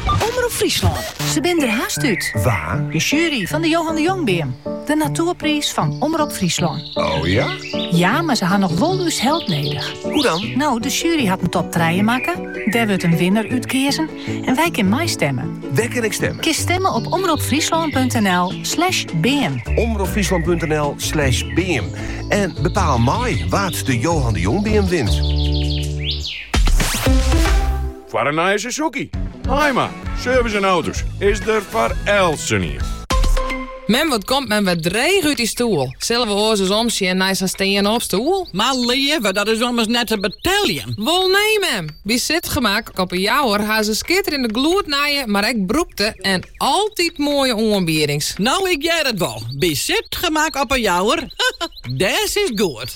Omrop Fryslân, se binne der hast út. Wa? De sjuery fan de Johan de Jongbeam. De natoerpriis fan Omrop Fryslân. Oh ja? Ja, mar se ha noch wol ús help nedich. Hoe dan? No, de sjuery hat in top trije makke. Dêr wurdt in winner útkeazen. En wy kinne meistimme. Wêr kin ik stimmen? Kinst stimme op omropfryslan.nl slash beam. Omropfryslan.nl slash beam. En bepaal mei wa't de Johan de Jongbeam wint. Foar een nije Suzuki. Haima, service en auto's, is er voor elsenien. Men wat komt men wat dreig uit die stoel. Zullen we oors eens omsjen naar zijn steen op stoel? Maar leven, dat is ommers net te beteljen. Wol nee, mem. Wie zit gemak op een jouwer haar ze skitter in de gloed naaien, maar ik broekte en altijd mooie oanbiedings. Nou, ik jij het wel. Bij zit gemak op een jouwer, des is goed.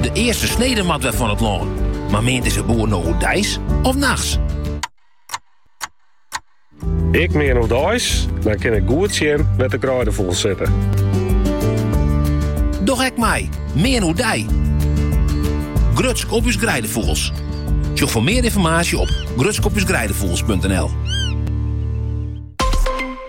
De earste snede moat wer fan it lân. Mar meant ús boer no oerdeis of nachts? Ik mean oerdeis, dan kin ik goed sjen wêr't de greidefûgels sitte. Doch ek mei, mean oerdei. Grutsk op ús greidefûgels. Sjoch foar mear ynformaasje op grutskopusgreidefugels.nl